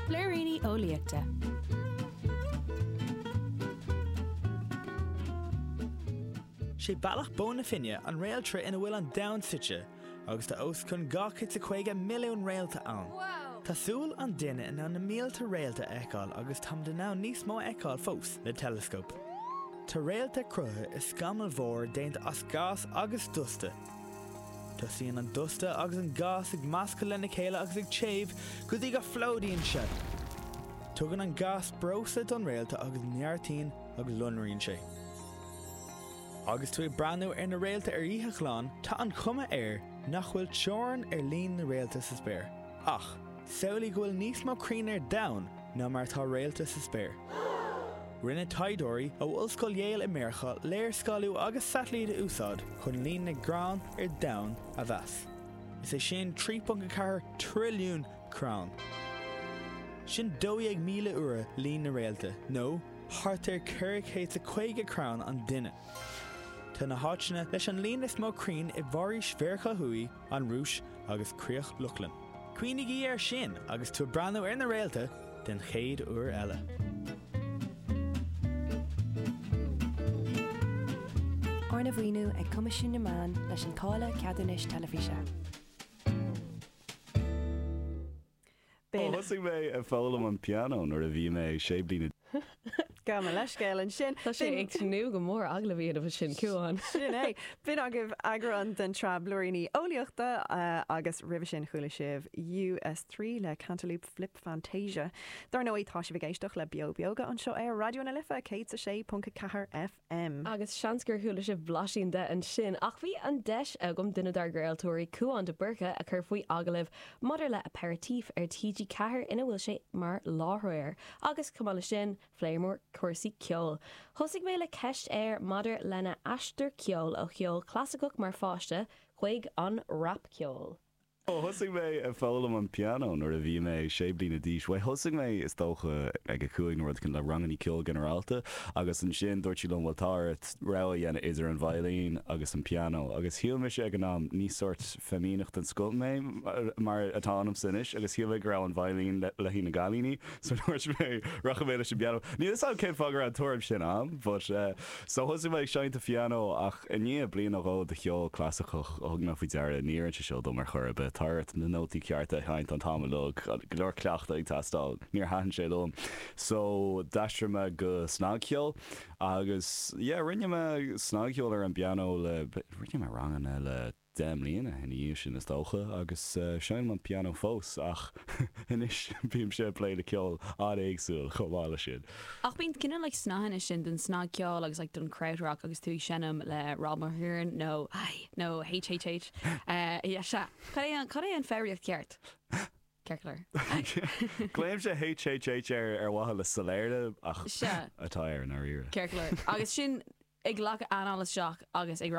Blúiríní Eolaíochta. Sé Bealach na Bó Finne an réaltra ina bhfuil an Domhan suite, agus tá os cionn 250 milliún réalta ann. Tá súil an duine in ann na mílte réalta a fheiceáil agus táimid in ann níos mó a fheiceáil fós le teileascóp. Tá réalta cruthaithe i scamall mór déanta as gás agus dusta. Tosaíonn an dusta agus an gás ag meascadh lena chéile agus ag téamh go dtí go bplódaíonn sé. Tugann an gás breosla don réalta agus neartaíonn agus lonraíonn sé. Agus tú ag breathnú ar na réalta ar oíche ghlan, tá an chuma air nach bhfuil teorainn ar líon na réalta sa spéir. Ach, samhlaigh go bhfuil níos mó crainn ar domhan ná mar atá réalta sa spéir. Rinne taighdeoirí ó Ollscoil Yale i Meiriceá léarscáiliú agus satailít á úsáid chun líon na gcrann ar domhan a mheas. Is é sin 3.4 trilliún crann. Sin 12,000 uair líon na réalta, nó thart ar 450 crann an duine. Tá na háiteanna leis an líon is mó crainn i bhforaois Mheiriceá Thuaidh, an Rúis agus Críoch Lochlann. Cuimhnigí air sin agus tú ag breathnú ar na réalta den chéad uair eile. Arna mhaoiniú ag Coimisiún na Meán leis an Táille Ceadúnais Teilifíse. Thosaigh mé ag foghlaim an pianó nuair a bhí mé sé bliana. Gabh mo leithscéal ansin. Tá sé ag tnúth go mór. Agallamh iad a sin Cuán. Sin é. B'in agaibh eagrán den tsraith Blúiríní Eolaíochta agus roimhe sin chuala sibh US3 le Cantaloop Flip Fantasia. Dar ndóigh tá sibh ag éisteacht le Beo Beoga anseo ar Raidió na Life 106.4 F. M. Agus seans gur chuala sibh blaisín de ansin. Ach bhí an deis agam duine dár gcraoltóirí, Cuán de Búrca, a chur faoi agallamh maidir le Aperitif ar TG4 ina bhfuil sé mar láithreoir. Agus chomh maith le sin, phléiomar cúrsaí ceoil. Thosaigh mé le ceist air maidir lena aistear ceoil ó cheol clasaiceach mar pháiste chuig an rapcheol. Thosaigh mé ag foghlaim an pianó nuair a bhí mé sé bliana d'aois. Bhuel, thosaigh mé, is dócha, ag a cúig nó rud éigin le rangannaí ceoil ginearálta agus ansin dúirt siad liom, bhuel, tá ort rogha a dhéanamh idir an veidhlín agus an pianó. Agus shíl mise ag an am, níor sórt feimineach den scoth mé, mar atá ionamsa anois, agus shíl mé go raibh an veidhlín le haghaidh na gcailíní, so dúirt mé, rachaidh mé leis an bpianó. Níl 'fhios a'm cén fáth go raibh an tuairim sin a'm, but. So thosaigh mé ag seinnt an phianó ach i ndiaidh bliain nó dhó de cheol clasaiceach thug mé faoi deara níor fheil sé seo dom ar chor ar bith. Tá ort na nótaí cearta a sheinnt an t-am uilig, go leor cleachtadh ag teastáil. Níor thaitin sé liom so d'aistrigh mé go snagcheol agus yeah rinne mé snagcheol ar an bpianó le, rinne mé ranganna le, Deich mbliana ina dhiaidh sin is dócha agus seinnim an pianó fós ach anois bímse ag plé le ceol an-éagsúil chomh maith leis sin. Ach bíonn cineál like snáitheanna sin den snagcheol agus like den krautrock agus tú ag seinm le Rob McGuirean nó nó HHH yeah sea cad é cad é an foghraíocht ceart? Circular. Glaoimse HHH air ar mhaithe le soiléire ach atá air i ndáiríre. Circular. Agus sinn ag glacadh anáil isteach agus ag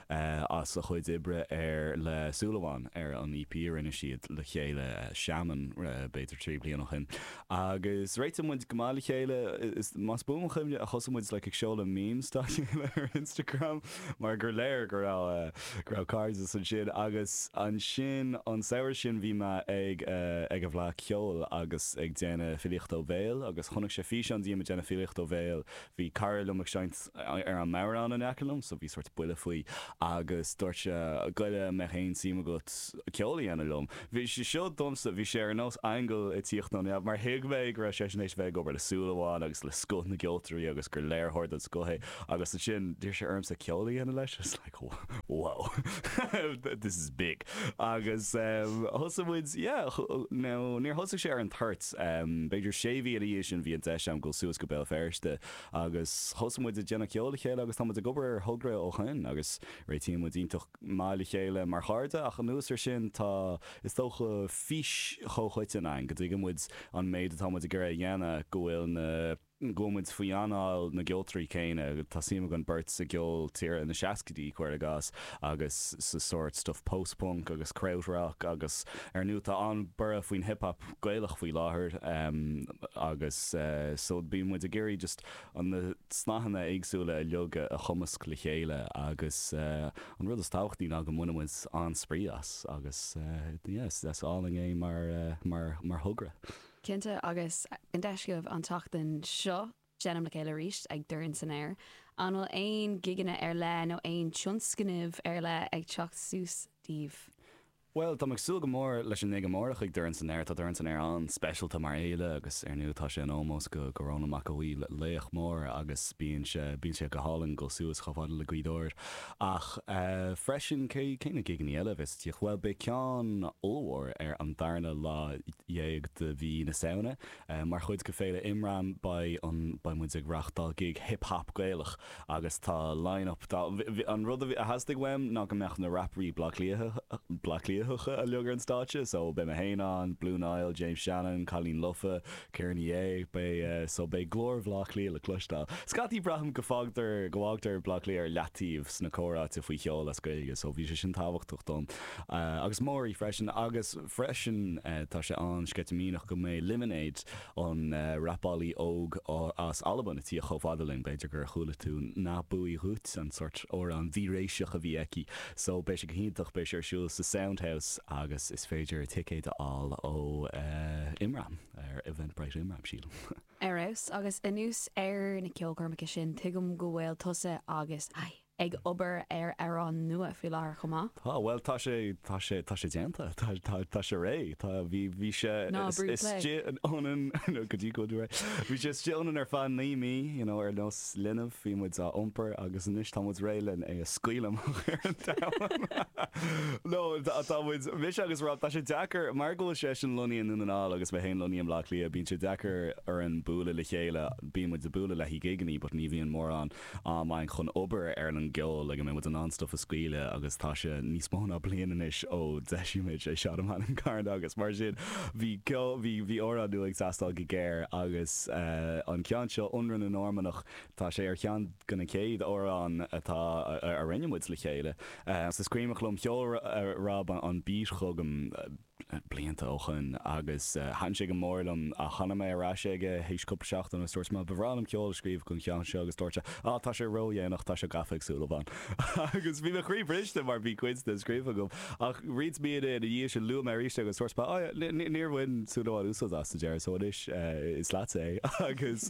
eh, as a chuid oibre ar le Súil Amháin ar an EP a rinne siad le chéile, eh, Shaman, eh, b'fhéidir trí bliana ó shin. Agus réitigh muid go maith le chéile is más buan mo chuimhne a thosaigh muid like ag seoladh memes dá chéile ar Instagram mar gur léir go raibh, eh, go raibh cairdeas ansin. Agus ansin an samhradh sin bhí mé ag, eh, ag an bhFleadh Cheoil agus ag déanamh filíochta ó bhéal agus chonaic sé físeán díom ag déanamh filíochta ó bhéal bhí cara liom ag seinnt ar an mbodhrán in aice liom so bhí sórt buille faoi agus dúirt sé goile mbeadh aon tsuim agat ceol a dhéanamh liom. Bhí sé seo domsa, bhí sé ar nós aingeal ag tíocht ó neamh mar thuig mé go raibh seisean éis bheith ag obair le Súil Amháin agus le scoth na gceoltóirí agus gur léiritheoir den scoth é agus ansin d'iarr sé ormsa ceol a dhéanamh leis. wow this is big agus thosaigh muid yeah nó níor thosaigh sé ar an toirt b'fhéidir sé mhí ina dhiaidh sin bhí an deis agam dul suas go Béal Feirste agus thosaigh muid ag déanamh ceoil le chéile agus tá muid ag obair ar thogra ó shoin agus réitíonn muid iontach maith le chéile mar chairde ach anuas air sin tá is dócha fís chomhchoiteann againn go dtuigeann muid an méid atá muid ag iarraidh a dhéanamh go bhfuil na go bhfuil muid faoi anáil na gceoltóirí céanna. Tá suim againn beirt sa gceol tíre na seascaidí, cuir i gcás, agus sa sórt stuif post-punk agus kraut-rock agus ar ndú tá an-borradh faoin hip hop gaelach faoi láthair agus so bíonn muid ag iarraidh just na snáitheanna éagsúla uilig a chumasc le chéile agus an rud is tábhachtaí ná go mbaineann muid an-spraoi as agus yeah is álainn é mar thogra. Cinnte, agus an deis agaibh an tseachtain seo seinm le chéile arís ag Dorn san Aer, an bhfuil aon ghigeanna ar leith nó aon tionscnaimh ar leith ag teacht suas daoibh? Bhuel, táim ag súil go mór leis an ngig amárach ag Dorn san Aer. Tá Dorn san Aer an-speisialta mar fhéile agus ar ndóigh tá sé in ómós do Rónán Mac Aodha Bhuí, laoch mór agus bíonn sé bíonn sé go hálainn dul suas chomh fada le Gaoth Dobhair. Ach freisin cé cé na gigeannaí eile a bheas. tíocht. Bhuel beidh ceann ollmhór ar an darna lá dhéag de mhí na Samhna. Mar chuid de Féile Imram beidh an beidh muid ag reachtáil gig hip hop Gaelach agus tá line up dá an rud a bhí a theastaigh uaim ná go mbeadh na rapairí Bleá Cliathacha uilig ar an stáitse so beidh mé féin ann, Blue Niall, James Shannon, Cailín Lofa, Ciara Ní É, Beidh, so beidh glór Bhleá Cliath le cloisteáil. Scaití, Braithim go fágtar, go bhfágtar Bleá Cliath ar leataobh sna comhráite faoi cheol as Gaeilge so bhí sé sin tábhachtach dom. Agus Máirí freisin. Agus freisin tá sé an-sceitimíneach go mbeidh Lemonade, an rapálaí óg as Albain ag tíocht chomh fada linn. B'fhéidir gur chuala tú Nach Buidhe Dhut, an sórt amhrán víreasach a bhí aici. So beidh sé go hiontach, beidh sé ar siúl sa Sound House agus is féidir ticéid a fháil ó Imram ar Eventbrite Imram sílim. Ar fheabhas. Agus anuas ar na ceolchoirmeacha sin, tuigim go bhfuil tusa agus Ai ag obair ar amhrán nua faoi láthair chomh maith? Tá, bhuel tá sé, tá sé, tá sé déanta, tá, tá, tá sé réidh, tá, bhí, bhí sé Ná brúigh play! istigh ionainn, no, go dtí go bhfuil tú réidh, bhí sé istigh ionainn ar feadh naoi mí, you know, ar nós, 'S linbh bhí muid á iompar agus anois tá muid réidh len é a scaoileadh amach ar an domhan. No, tá muid, mise agus Rob, tá sé deacair, mar go bhfuil seisean lonnaithe i nDún na nGall agus mé féin lonnaithe i mBleá Cliath, bíonn sé deacair orainn bualadh le chéile, bíonn muid ag bualadh le haghaidh gigeannaí but ní bhíonn mórán am againn chun obair ar an gceol le go mbeidh muid in ann stuff a scaoileadh agus tá sé níos mó ná bliain anois ó d'eisigh muid I Shot a Man in Carna agus mar sin Bhí ceol, bhí, bhí amhrán nua ag teastáil go géar agus eh an ceann seo, Ionradh na Normannach, tá sé ar cheann go na céad amhrán atá, a, a rinne muid le chéile. Eh so is cuimhneach liom sheol Ro, eh, Rob an Beat chugam eh blianta ó shoin agus eh thaitn sé go mór liom ach thána mé ar ais aige théis cúpla seachtain agus dúirt mé ba bhreá liom ceol a scríobh gon cheann seo agus dúirt sé ah tá sé ródhéanach, tá sé gafa ag Súil Amháin. Agus bhí mo chroí briste mar bhí cuid de scríofa agam. Ach roinnt míonna ina dhiaidh sin luaigh mé arís é agus dúirt mé, Á, níor bhain Súil Amháin úsáid as sa deireadh so anois is leatsa é. Agus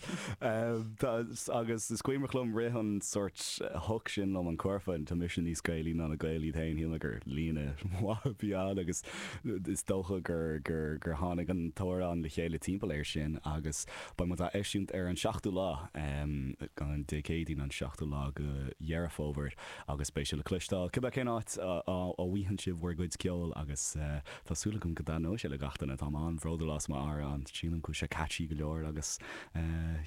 tá, agus is cuimhneach liom rith an sórt hook sin liom, an cúrfa, tá mise níos Gaelaí ná na Gaeil iad féin, shíl mé gur líne mhaith a bhí ann agus is dócha gur, gur, gur tháinig an t-amhrán le chéile timpeall air sin agus beidh muid á eisiúint ar an seachtú lá, Dé Céadaoin an seachtú lá go Dheireadh Fómhair. agus beidh sé le cloisteáil cibé cén áit a bhfaigheann sibh bhur gcuid ceoil agus tá súil agam go dtaitneoidh sé le gach duine. Táim an-bhródúil as mar amhrán sílim go bhfuil sé catchy go leor agus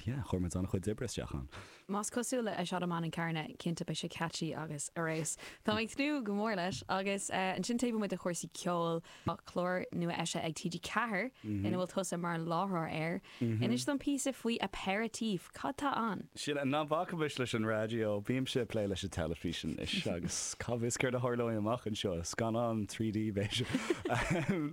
yeah chuir muid an-chuid oibre isteach ann. Más cosúil le I Shot a Man in Carna cinnte beidh sé catchy agus arís táim ag tnúth go mór leis agus ansin taobh amuigh de chúrsaí ceoil Tá clár nua eisithe ag TG4 ina bhfuil tusa mar láithreoir air. Inis dom píosa faoi Aperitif. Cad tá ann? Sin é. Ná bacaimis leis an raidió. Bímse ag plé leis an teilifís anois agus cá bhfios céard a tharlóidh amach anseo. Scannán trí D, b'fhéidir.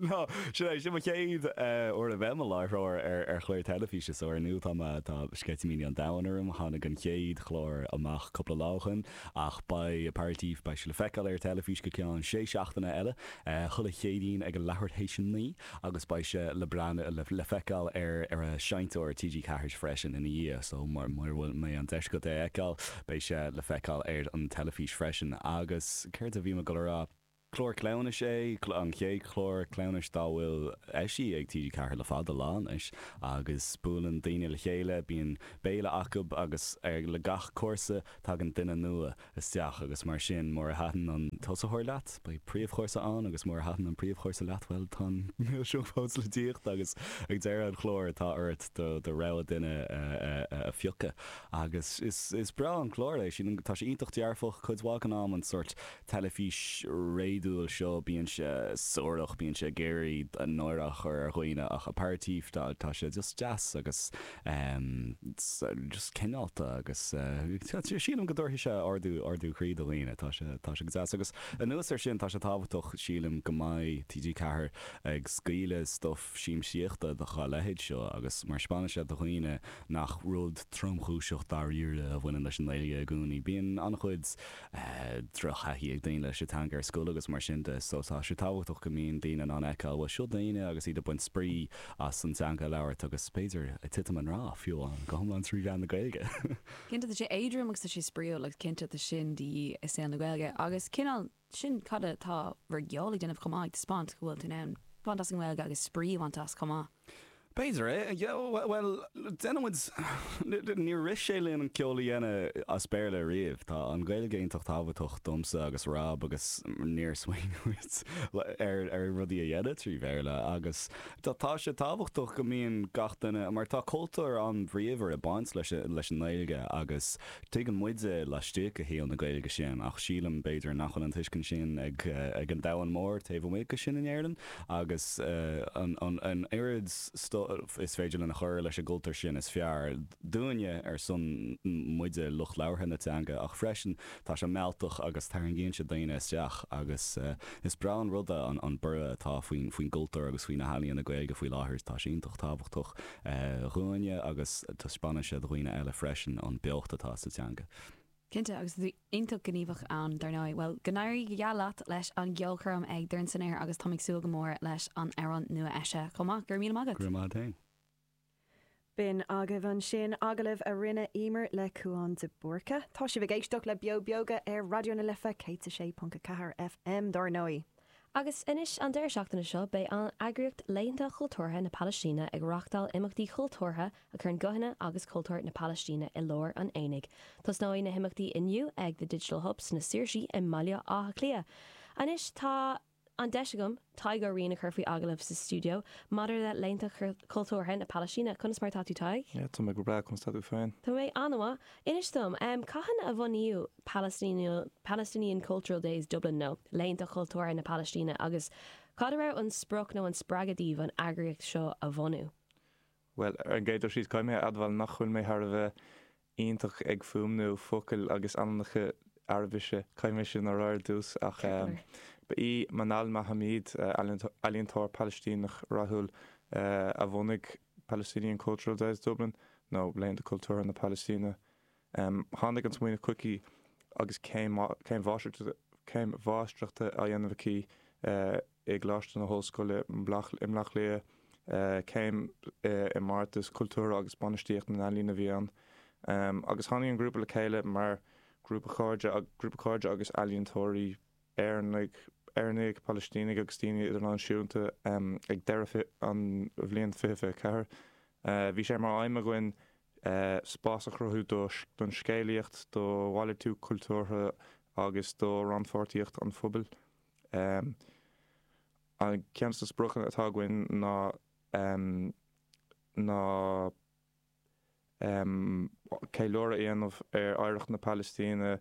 Nó sin é, sin mo chéad uair a bheith i mo láithreoir ar chlár teilifíse, so ar ndú tá sceitimíní an domhain orm. Tháinig an chéad chlár amach cúpla lá ó shin. Ach beidh Aperitif, beidh sé le feiceáil ar teilifís go ceann sé seachtaine eile, chuile Chéadaoin ag a leathuair théis a naoi, agus beidh sé le breathnú, le feiceáil ar, ar an seinnteoir TG Ceathair freisin ina dhiaidh, so mura, mura bhfuil, mbeidh an deis agat é a fheiceáil, beidh sé le feiceáil ar an teilifís freisin. Agus céard a bhí mé ag goil a rá? Clár cleamhnais é, an chéad chlár cleamhnais dá bhfuil eisithe ag TG4 le fada lá anois, agus buaileann daoine le chéile, bíonn béile acu agus le gach cúrsa tagann duine nua isteach agus mar sin mura thaitin an tosaitheoir leat, beidh príomhchúrsa ann agus mura thaitin an príomhchúrsa leat, bhuel tá an milseog fós le tíocht agus ag deireadh an chláir tá ort do do rogha duine a phiocadh agus is breá an clár é, tá sé iontach dearfach cuid mhaith den am, an sórt teilifís réadúil seo, bíonn sé suarach, bíonn sé ag iarraidh náire a chur ar dhaoine ach Aperitif tá sé just deas agus just cineálta agus sílim go dtabharfaidh sé ardú ardú croí do dhaoine, tá sé tá sé go deas agus anuas ar sin tá sé tábhachtach sílim go mbeidh TG4 ag scaoileadh stuff siamsaíochta do dhá leithéid seo agus mar spáineann sé do dhaoine nach rud tromchúiseach dáiríre a bhaineann leis an nGaeilge i gcónaí bíonn an-chuid drochthaithí ag daoine leis an teanga ar scoil agus mar sin de so tá sé tábhachtach go mbíonn daoine in ann a fheiceáil bhuel seo daoine agus iad ag baint spraoi as an dteanga a labhairt agus b'fhéidir ag titim i ngrá fiú amháin go hiomlán trí mheán na Gaeilge. Cinnte tá sé éadrom agus tá sé spraoiúil agus cinnte tá sin de dhíth i saol na Gaeilge agus cineál sin cad atá bhur gceol ag déanamh chomh maith ag taispeáint go bhfuil tú in ann baint as an nGaeilge agus spraoi a bhaint as chomh maith. B'fhéidir é. Bhuel, déanann muid, níor rith sé linn ceol a dhéanamh as Béarla ariamh. Tá an Ghaeilge iontach tábhachtach domsa agus Rob agus níor smaoinigh muid ar rudaí a dhéanamh trí Bhéarla agus tá tá sé tábhachtach go mbíonn gach duine, mar tá cultúr an-bhríomhar ag baint leis an nGaeilge agus tuigeann muide laistigh de shaol na Gaeilge sin ach sílim b'fhéidir nach bhfuil an tuiscint sin ag an domhan mór taobh amuigh de sin in Éirinn. Agus an oiread stuif is féidir linn a chur leis an gcultúr sin is fearr dúinne ar son muide lucht labhartha na teanga ach freisin tá sé mealltach agus tarraingíonn sé daoine isteach agus is breá an rud é an borradh atá faoin gcultúr agus faoi na healaíona Gaeilge faoi láthair tá sé iontach tábhachtach dhúinne agus taispeánann sé do dhaoine eile freisin an beocht atá sa teanga. Cinnte, agus tú iontach gníomhach ann, dar ndóigh. Bhuel, go n-éirí go geal leat leis an gceolchoirm ag Dorn San Aer agus táim ag súil go mór leis an amhrán nua-eisithe chomh maith. Go raibh míle maith agat! Go raibh maith a'd fhéin. B'in agaibh ansin agallamh a rinne Emer le Cúán de Búrca. Tá sibh ag éisteacht le Beo Beoga ar Raidió na Life 106.4 FM dar ndóigh. Agus anois, an deireadh seachtaine seo, beidh an eagraíocht Laethanta Chultúrtha na Palaistíne ag reáchtáil imeachtaí cultúrtha a chuireann guthanna agus cultúr na Palaistíne i lár an aonaigh. Tosnóidh na himeachtaí inniu ag The Digital Hub sna Saoirsí i mBaile Átha Cliath. Anois tá an deis agam Tadhg Ó Riain a chur faoi agallamh sa stiúideo maidir le Laethanta Chultúrtha na Palaistíne. Conas mar atá tú Tadhg? Tá mé go breá, conas atá tú féin? Tá mé an-mhaith. Inis dom, cathain a bunaíodh Palestinian Cultural Days Dublin nó Laethanta Chultúrtha na Palaistíne agus cad a raibh an sprioc nó an spreagadh daoibh an eagraíocht seo a bhunú? Bhuel, ar an gcéad dul síos, caithfidh mé a admháil nach bhfuil mé thar a bheith iontach ag fuaimniú focail agus ainmneacha Araibise, caithfidh mé sin a rá ar dtús, ach ba í Manal Mahamid, ealaíontóir Palaistíneach rathúil, a bhunaigh Palestinian Cultural Days Dublin nó Laethanta Cultúrtha na Palaistíne. Tháinig an smaoineamh chuici agus í, céim mháistreachta á dhéanamh aici i gColáiste na hOllscoile i mBleá Cliath, céim i mBeartas Cultúrtha agus Bainistíocht na nEalaíon a bhí ann, agus tháinig an grúpa le chéile mar ghrúpa cairde agus ealaíontóirí. Éi, Éireannaigh, Palaistínigh agus daoine idirnáisiúnta ag deireadh an bhliain 2024. Bhí sé mar aidhm againn spás a chruthú don scéalaíocht, do mhalartú cultúrtha agus do rannpháirtíocht an phobail. Ceann de na spriocanna atá againn ná, ná. ceiliúradh a dhéanamh ar oidhreacht na Palaistíne,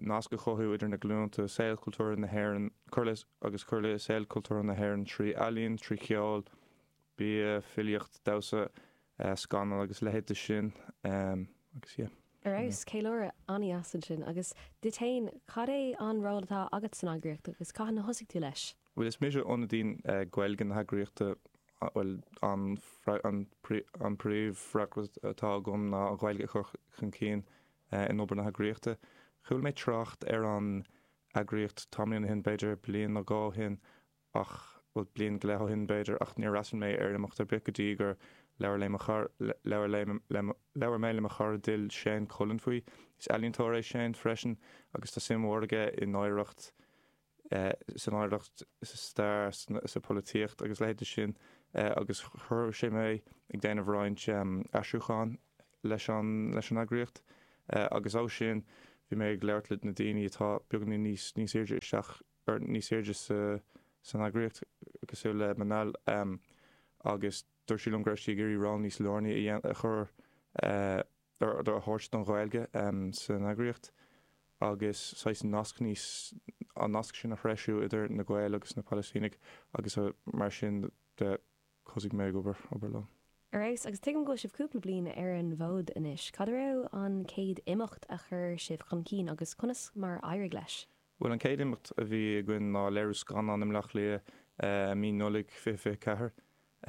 nasc a chothú idir na glúinte, saol cultúrtha na hÉireann, cur le agus cur le saol cultúrtha na hÉireann trí ealaín, trí cheol, bia, filíocht, damhsa, scannán agus leithéid de sin agus yeah. Ar fheabhas, ceiliúradh an-deas ansin agus duit fhéin, cad é an ról atá agat san eagraíocht agus cathain a thosaigh tú leis? Bhuel, is mise ionadaí Gaeilge na heagraíochta. Bhuel, an, an, an príomhfhreagracht atá agam ná an Ghaeilge a chur chun cinn in obair na heagraíochta. Chuala mé trácht ar an eagraíocht tamaillín ó shin, b'fhéidir bliain nó dhó ó shin ach, bhuel, bliain go leith ó shin b'fhéidir ach níor fhreastail mé ar imeacht ar bith go dtí gur labhair lé mo chara, labhair lé, labhair mé le mo chara dil, Shane Cullen faoi. Is ealaíontóir é Shane freisin agus tá suim mhór aige in oidhreacht, san oidhreacht, sa stair, sa pholaitíocht agus leithéidí sin agus chuir sé mé ag déanamh roinnt aistriúcháin leis an eagraíocht agus as sin bhí mé ag labhairt le na daoine atá beagainín níos níos airde isteach or níos airde sa san eagraíocht cosúil le Manal agus dúirt sí liom go raibh sí ag iarraidh ról níos lárnaí a dhéanamh a chur aird a thabhairt don Ghaeilge san eagraíocht agus saghas nasc níos, an nasc sin a threisiú idir na Gaeil agus na Palaistínigh agus mar sin de thosaigh mé ag obair, obair leo. Ar fheabhas. Agus tuigim go bhfuil sibh cúpla bliain ar an bhfód anois. Cad a raibh an chéad imeacht a chur sibh chun cinn agus conas mar éirigh leis? Bhuel an chéad imeacht a bhí againn ná léiriú scannán i mBleá Cliath i mí Nollaig 2024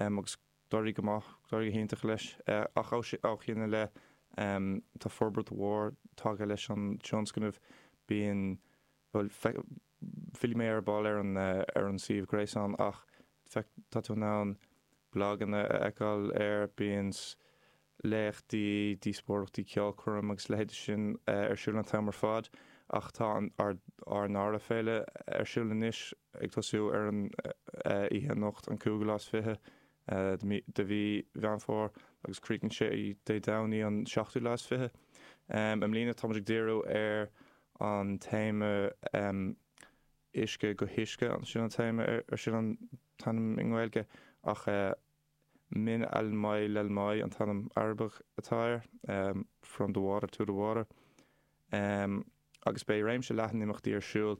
agus D'éirigh go maith, d'éirigh go hiontach leis ach ó shin i leith tá forbairt mhór tagtha leis an tionscnamh. Bíonn, bhuel, fillfidh mé ar ball ar an suíomh gréasáin ach tá tú in ann blaganna a fheiceáil air, bíonn, léachtaí, díospóireachtaí, ceolchoirm agus leithéidí sin ar siúl an t-am ar fad ach tá an ár ndara féile ar siúl anois ag tosú ar an oíche anocht an cúigiú lá is fiche de mhí Mheán Fómhair agus críochnaíonn sé Dé Domhnaigh an seachtú lá is fiche. I mbliana táimid ag díriú ar an téama Uisce go hUisce sin an téama ar sin an t-ainm i nGaeilge ach Min al-Mai lal-Mai an t-ainm Arabach atá air, From the Water to the Water, agus beidh réimse leathan imeachtaí ar siúl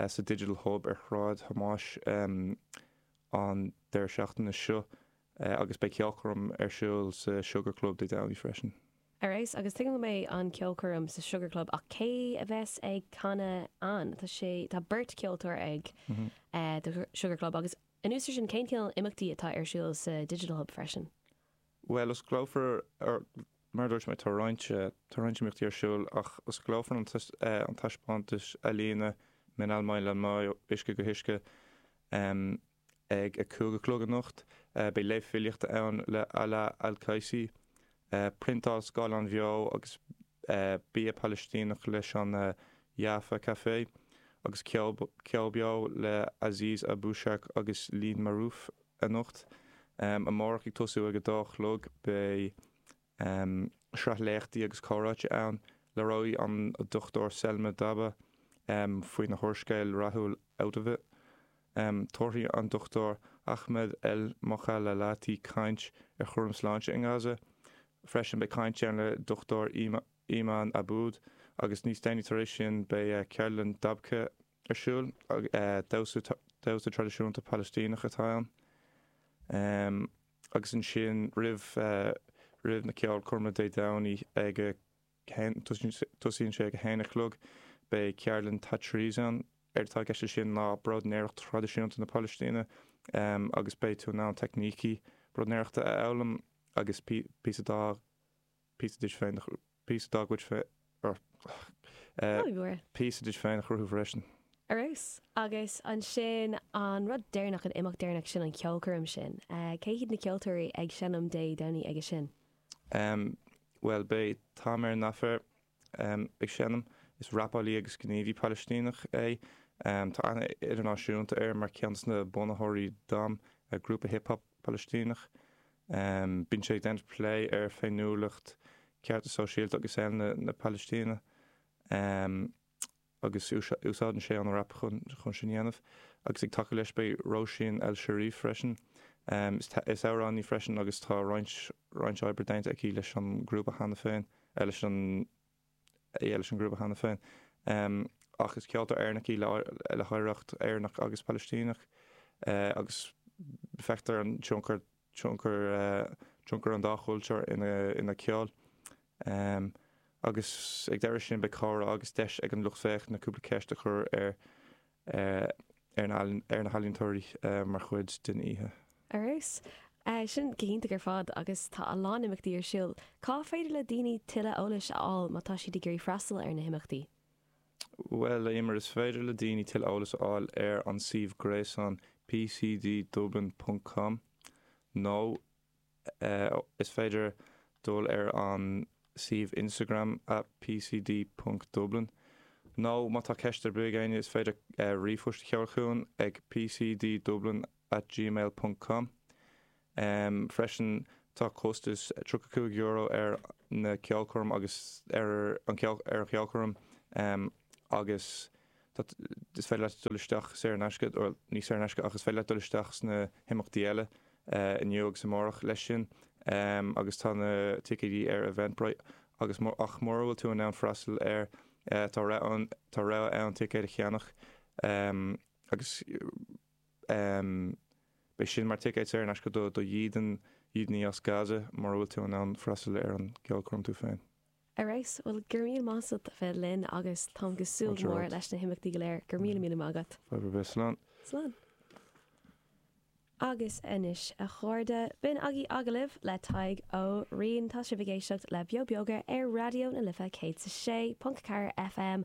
sa Digital Hub ar Shráid Thomáis an deireadh seachtaine seo agus beidh ceolchoirm ar siúl sa Sugar Club Dé Domhnaigh freisin. Ar fheabhas, agus tuigim go mbeidh an ceolchoirm sa Sugar Club ach cé a bheas ag canadh ann? Tá sé, tá beirt cheoltóir ag The Sugar Club agus. Anuas ar sin, cén cineál imeachtaí atá ar siúl sa Digital Hub freisin? Bhuel, osclófar, mar a dúirt mé, tá roinnt, tá roinnt imeachtaí ar siúl ach osclófar an, an taispeántas ealaíne Min al-Mai lal-Mai, Uisce go hUisce ag a cúig a chlog anocht. Beidh léamh filíochta ann le Alaa Al-Qaisi, priontáil scáileáin bheo agus bia Palaistíneach leis an Jaffa Café agus ceol beo le Aziz Abushark agus Leen Maarouf anocht. Amárach ag tosú ag a dó a chlog beidh sraith léachtaí agus comhráite ann. Labhróidh an Dr Selma Dabbagh faoina húrscéal rathúil Out of It. Em tabharfaidh an Dr Ahmed El Mokhallalati caint ar chúram sláinte i nGaza. Freisin beidh caint ann le Dr Eman Abboud agus níos déanaí tar éis sin beidh ceardlann dabke ar siúl. Damhsa traidisiúnta Palaistíneach atá ann. Em agus ansin roimh na ceolchoirme Dé Domhnaigh ag a. Tosaíonn sé ag a haon a chlog. Beidh ceardlann tatreez ann. Éard atá i gceist le sin ná bróidnéireacht thraidisiúnta na Pailistíne agus beidh tú in ann teicnící bróidnéireachta a fhoghlaim agus píosa dá píosa duit féin a píosa dá gcuid píosa duit féin a chruthú freisin. Ar fheabhas. Agus ansin an rud deireanach, an imeacht deireanach, sin an cheolchoirm sin. Cé hiad na ceoltóirí ag seinm Dé Domhnaigh aige sin? Em, bhuel, beidh, Tamer Nafar, em, ag seinm. Is rapálaí agus gníomhaí Palaistíneach é. Em, tá aithne idirnáisiúnta air mar ceann desna bunaitheoirí DAM, eh, grúpa hip hop Palaistíneach. Em, bíonn sé ag déanamh plé ar féiniúlacht, cearta sóisialta agus eile na, na Palaistíne. Em. agus úsáideann sé an rap chun sin a dhéanamh, agus ag tacú leis beidh Róisín El Cherif freisin, is amhránaí í freisin agus tá roinnt oibre déanta aici leis an ngrúpa cheana féin, eh leis an, yeah leis an ngrúpa cheana féin, em ach is ceoltóir Éireannach í le hoidhreacht Éireannach agus Palaistíneach, eh agus feictear an tionchar, tionchar tionchar an dá chultúr ina ina ceol. Agus ag deireadh sin beidh comhrá agus deis ag an lucht féachana cúpla ceist a chur ar ar na ar na healaíontóirí mar chuid den oíche. Ar fheabhas. Sin go hiontach ar fad agus tá a lán imeachtaí ar siúl. Cá féidir le daoine tuilleadh eolais a fháil má tá siad ag iarraidh freastal ar na himeachtaí? Bhuel, a Eimear, is féidir le daoine tuilleadh eolas a fháil ar an suíomh gréasáin pcddublin.com nó is féidir dul ar an suíomh Instagram at pcd.dublin nó má tá ceist ar bith ag éinne is féidir ríomhphost a sheoladh chugainn ag pcddublin at gmail ponc com. Ehm, freisin, tá costas tríocha cúig euro ar na ceolchoirm agus ar an, ar an cheolchoirm. Ehm, agus tá, is féidir leat dul isteach saor in aisce, bhuel, ní saor in aisce ach is féidir leat dul isteach sna himeachtaí eile, eh, inniu agus amárach leis sin. Ehm, agus tá na ticéidí ar Eventbrite agus má, ach mura bhfuil tú in ann freastal air, eh, tá rogha ann, tá rogha ann ticéid a cheannach. Ehm, agus. Beidh sin mar ticéad saor in aisce do dhídean, dhídeanaí as Gaza mura bhfuil tú in ann freastal ar an gceolchoirm tú féin. Ar fheabhas, bhuel, go raibh míle maith agat as ucht a bheith linn agus táim ag súil go mór leis na himeachtaí go léir. Go raibh míle míle maith agat. Fadhb ar bith. Slán. Slán. Agus anois, a chairde, b'in agaí agallamh le Tadhg Ó Riain. Tá sibh ag éisteacht le Beo Beoga ar Raidió na Life 106.4 FM